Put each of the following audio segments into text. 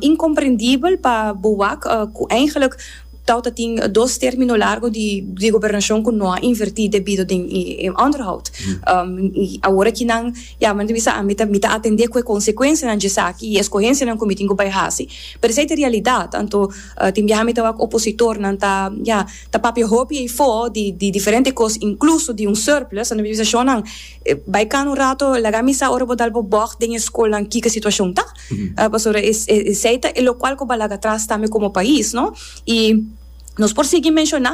Incomprendibel pa bo wak cu eigenlik tau ta tin dos termino largo di gobernacion cu no a inverti debido den e onderhoud. Y awor aki nan yama nan ta bisa ami ta mi ta atende cu e consecuencianan dje esaki y e escogencianan cu mi tin cu bay haci. Pero esey ta e realidad anto tin biaha mi ta wak opositornan ta ya ta papia hopi eyfo di diferente cos incluso di un surplus anto mi ta bisa shonan bay cana un rato laga mi sa ora bo dal bo bog den e schoolnan kico e situacion ta. Pasobra esei ta e lokual ku balaga atras tambe komo pais, no? I nos por sigui menshoná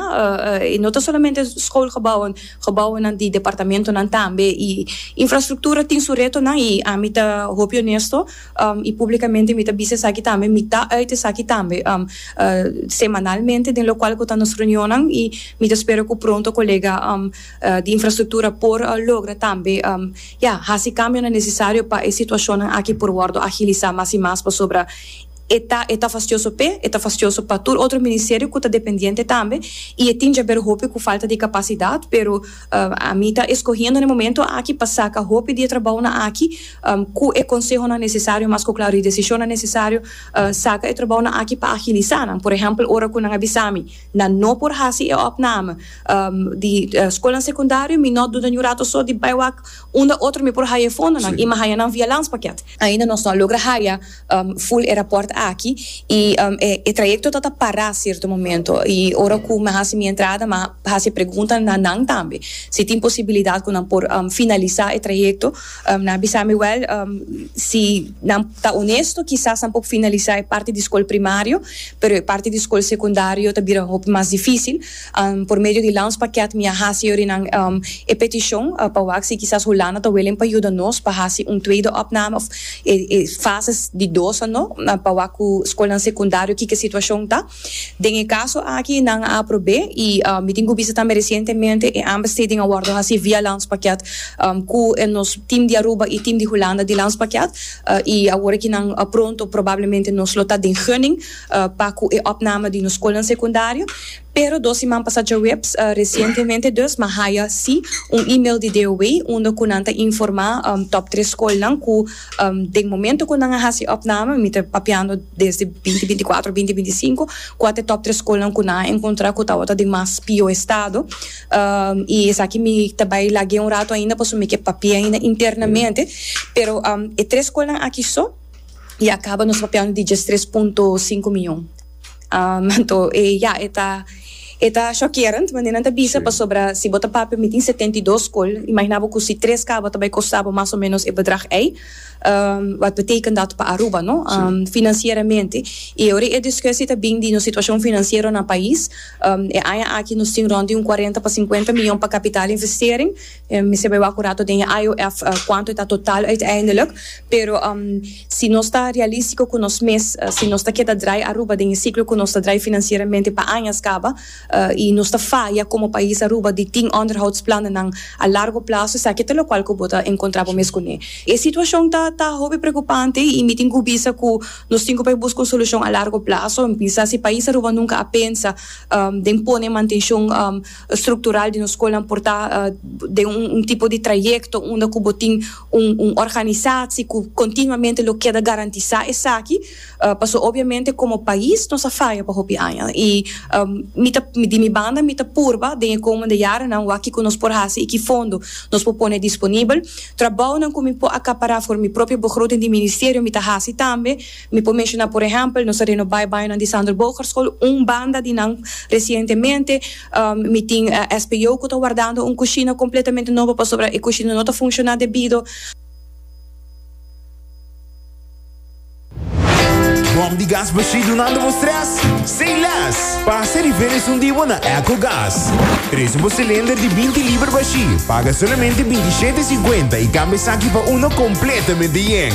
i no ta solamente skoolgebouwen, gebouwennan di departamentonan tambe. I infrastruktura tin su retonan i ami ta hopi onesto i públikamente mi ta bisa esaki tambe, mi ta uit esaki tambe semanalmente den lokual ku ta nos reunionnan i mi ta spera ku pronto kolega. di infrastruktura por logra tambe ya hasi kambionan nesesario pa e situashonnan aki por wòrdu agilisá mas i mas pasobra e ta e ta fastioso p'e, e ta fastioso pa tur otro ministerio ku ta dependiente tambe i e tin djaber hopi ku falta di kapasidat pero ami ta eskohendo na e momento aki pa saka hopi di e trabounan aki ku e konsehonan nesesario mas ku klaro i desishonnan nesesario saka e trabounan aki pa agilisá nan por ehèmpel ora ku nan a bisa mi nan no por hasi e òpname di skolnan sekundario mi no duda ni un rato so di bai wak unda otro mi por haya e fondonan y mi haya nan via lans pakiat. Ainda nos no a logra haya ful e raport aki y e trayecto ta ta para cierto momento y ora cu mi a haci mi entrada mi a haci e pregunta na nan tambe si tin posibilidad cu nan por finalisa e trayecto nan a bisa mi wel si nan ta honesto kisas nan por finalisa e parti di skol primario pero e parti di skol sekundario ta bira hopi mas dificil. Por medio di Lounge Pakket mi a hasi yorinan e petishon pa wak si kisas Hulanda ta welen pa yuda nos pa hasi un tweede opname òf e fase di dos anó pa wak ku skolnan sekundario kiko e situashon ta. Den e kaso aki nan a aprob'é i mi tin ku bisa tambe resientemente e aanbesteding a wòrdu hasi via Lounge Pakket ku nos tim di Aruba i tim di Hulanda di Lounge Pakket i awor aki nan pronto probablemente nos lo ta den gunning. pa cu e opname di nos scolnan secundario, pero dos siman pasa djaweps, recientemente dus, mi a haya si un email di DOW unda cu nan ta informa top tres scolnan cu den momento cu nan a haci e opname, mi ta papiando desde binti binti cuatro, binti binti cinco, cu a ta e top tres scolnan cu nan a encontra cu tawata den mas pio estado, y esaki mi ta bay lag'e un rato ainda pasobra mi ke papia ainda internamente, pero e tres scolnan aki so. y a caba nos papial di diestres punto sinku miyon. Um, anto e ya, e ta, e ta shockerend manera nan ta bisa, Sí. pasobra si bo ta papia mi tin setenta y dos skol, imagina bo cu si tres caba ta bay costa bo mas o menos e bedrag ey, um, wat betekent dat pa Aruba, no? Sí. Um, financieramente. Y ora e discussie ta bin di nos situacion financiero na pais, um, e aña aki nos tin rond di un cuarenta pa cincuenta miyon pa capital investering, Mi sebe wak un rato den e IOF kuantu e ta total uiteindelijk, pero si nos ta realístiko ku nos mes, si nos ta keda drai Aruba den e siklo ku nos ta drai finansieramente pa añas kaba i nos ta faya komo pais Aruba di tin onderhoudsplannennan a largo plazo, esaki ta lokual ku bo ta enkontrá bo mes kuné. E situashon ta ta hopi preokupante i mi tin ku bisa ku nos tin ku por buska un solushon a largo plazo. Mi pensa si pais Aruba nunka a pensa den pone mantenshon. struktural di nos skolnan por ta den un tipo di trayekto unda ku bo tin un un organisasi ku kontinuamente lo keda garantisá esaki pasobra obiamente komo pais nos a faya pa hopi aña i mi ta di mi banda mi ta purba den e komende yarenan wak kiko nos por hasi i ki fondo nos por pone disponibel trabounan ku mi por akapará for mi propio begroting di ministerio mi ta hasi tambe. Mi por menshona por ehèmpel, nos a renobá e bañonan di Sander Bogarschool, un banda di nan resientemente. Mi tin SPO ku ta wardando un kushina kompletamente nobo pasobra e kushina no ta funshoná debido. Bòm di gas bashí dunando bo strès? Sin lès! Pasa di felis un di bo na Echo Gas. Trese bo silinder di binti liber bashí, paga solamente binti shete e sinkuenta i kambia esaki pa uno kompletamente yen.